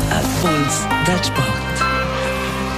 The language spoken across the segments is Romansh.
Erfolgs dad sport.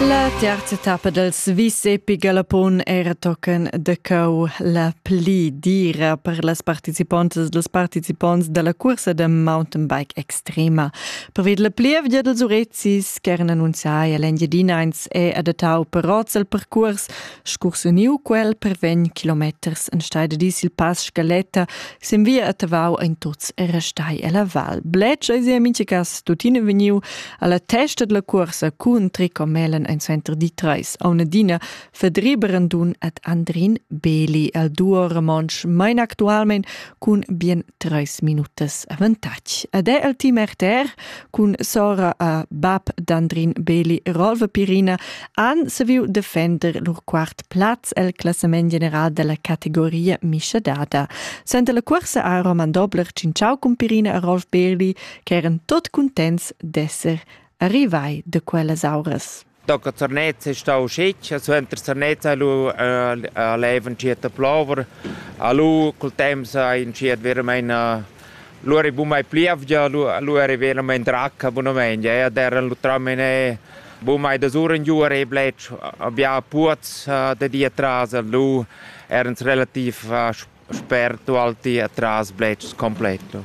La terza tappa dels vis epi galapon era tochen de cau la pli dira per las participontas dels participonts della cursa de mountain bike extrema. Pervid la plievgia dels Urezis, ch'eran annunziai all'Engiadinains, è adattau per oz al percurs Scursuniu quel per vegn kilometers enstei de dis il pass Scaletta sin via a Tavau ein tuts era stai ella val. Bletsch ei sia mincha cas tuttina vegniu alla testa della cuorsa cun tricomelen ein center di treis Aunadina Fedri Brandun et Andrin Beli al duo Ramonsch mein actualmein cun bien treis minutas avantatg. Ed è el team RTR cun sora a bab d'Andrin Beli Rolva Pirina han saviu defender lur quart plaz el classament general dalla categoria mischadada. Senta la cuorsa ha Roman Dobler tschintschau cun Pirina e Rolf Beli, che eran tot cuntents d'esser arrivai de quellas auras. Doca Zernez è stau scetg, suenter Zernez ha lu a leva entschiet a plover, a lu col temps ha entschiet veramein a lu era buca mai plievgia, lu, lu era veramein dracca bunamein, e ad era lu tramen e buca mai da sura in giu e bletsch, abia puoz da di atras, lu erans relativ Sper tualti atras bletschs completo.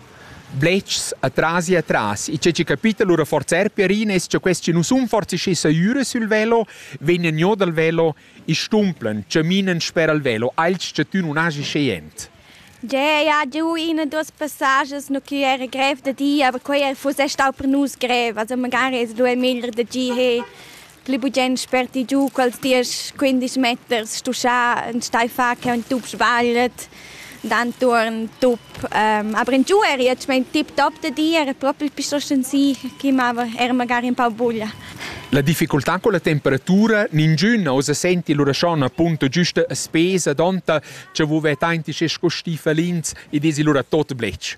Bletschs atras e atras. E c'è capito lura forza er Pierines, che questi non sun forse schi saiure sul velo, vegnan jo dal velo e stumplan, caminan sper al velo, als che tu non hagi scient. Yeah, ja, du, in dos passages no che era grev da dir, aber quei fuss stau per nus grev, also magari es lu è meglio da gi he. pli bugen sperti giu quels diesch quindisch meters stuschà enstei fa che un tup sbagliet d'antuorn tup ähm, aber in giu eri jetzt mein tip top de di era proprio più sostanzial che mava era magari un po' buglia La difficultà con la temperatura, ningiun osa senti l'urascion appunto giusta a spesa, donta, che vuve tanti sche sco stifelins e desi lura tot blech.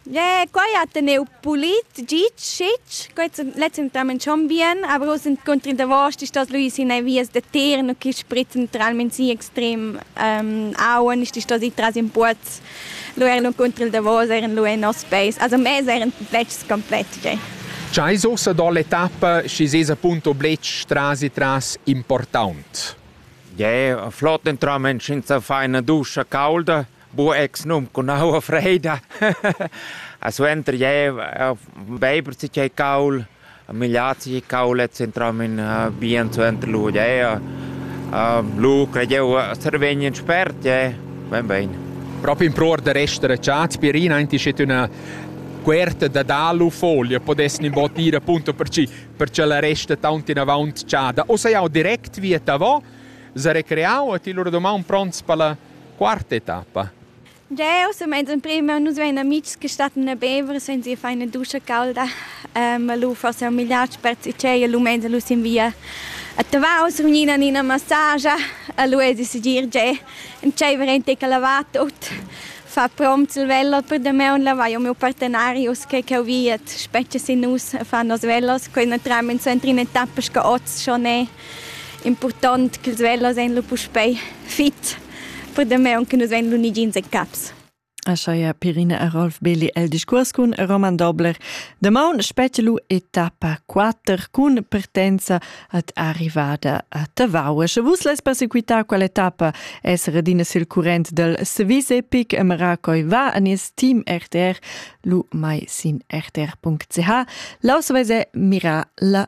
Quai ha teneu pulit git schitg, quei letgentamain schon bien, aber oz encunter in davos ist das Luis in vias da terno che sprit naturalmente sì extrem ähm, Auen ist das ich tras in Puoz. Lu er encunter il davos eran lu en nos peis. Also mes eran letgs komplett. Tgei. Tgei sosa dall'etappa schi ses appunto bletsch tras e tras important? Ja, flott entrament senza feina duscha caulda. Bu ex num cun aua freida. A suenter jeu beiber si tgei caul, migliar si caulet s'entran in bien suenter lu jeu. Lu crei jeu survegn in spert jeu. Bein bein. Propi impruar da rester acciat, spirina enti sche üna cuerta da dalu folia podessin in bot ir appunto per chi per cha la resta taunt inavant chada. O sei jau direct via tavo, za recreau e ti lura domaun pronts per la Quarta etappa. Jeu sun meins emprema, nus vein amitgs che stattan a bever, senza ir fein a duscha caulda. ma lu forsa un migliac pertgei che lu meins lu sin via a Tavau sur gnina Nina massagia e lu esi segir gie entscheiver ein tec a lavar tut, far prompts il veller per damaun, lavar miu partenarius che cheu viet, spetga sin nus a far nos vellers, quei na trai mens entri in etappa sco oz schon e. Impurtant ch'ils velas èn lu puspei fit per damaun che nus vein lu ni jeans e caps. Ascheia Pirina e Rolf Belli el discurs cun Roman Dobler. Damaun spetga lu etappa 4 cun partenza ad arrivada a Tavau. Sche vus lais persequitar quella etappa es redina sil current del Swiss Epic e Maracoi va an is team RTR lu mai sin rtr.ch. Laus vese mira la